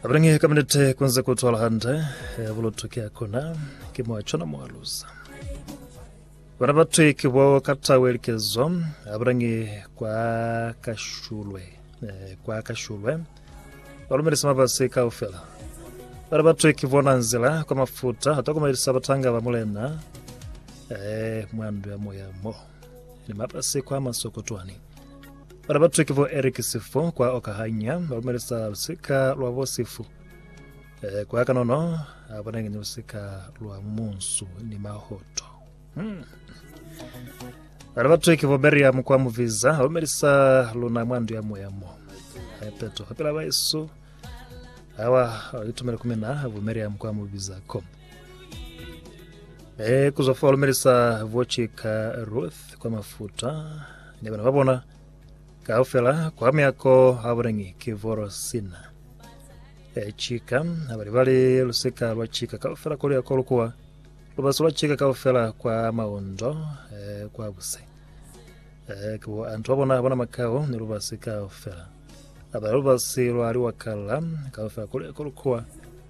Abrange ka minute kunze ku twala hande eh, bulutu ke akona ke mwa chona mwa luza bana ba thwe ke bo ka tawe likezo abrange kwa kashulwe eh, kwa kashulwe ba lumelisa mabase kaufela bana ba thwe ke bona nzila kwa mafuta hata kumelisa batanga ba mulena eh, mwandu ya moya mo ni mabasi kwa masokotwani bana batwe ke bo eric sifo kwa okahanya ba lumelisa lusika lwa bo sifu eh, kwa kanono abanenge ni lusika lwa munsu ni mahoto hmm. bana batwe ke bo meriam kwa muviza ba lumelisa luna mwa ndu ya moya mo Eh, peto pela baesu awa itumele kumina bo meriam kwa muviza ko e kuza fa lumelisa vochika ruth kwa mafuta ni bana ba bona kaufela kwa myako ha bonengi ke voro sina e chika abali bali lusika lwa chika kaufela kolo ya kolo kuwa lubaso lwa chika kaufela kwa maondo e kwa buse e kubo antu ba bona bona makao ni lubasi kaufela abali lubasi lwa liwakala kaufela kolo ya kolo kuwa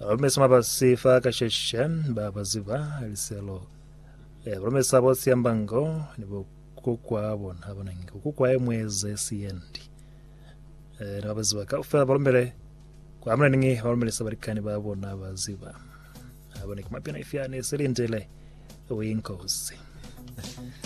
Balomesa mabasi fa kasheshe ba baziba liselo. Eh, balomesa bo siambango ni bo kukwa bona bona ngi kukwa emwe ze siendi. Eh, ni baziba ka ufela balomele kwa amna ningi balomelesa balikani ba bona baziba. Abone kumapina ifyane selindile uyinkosi.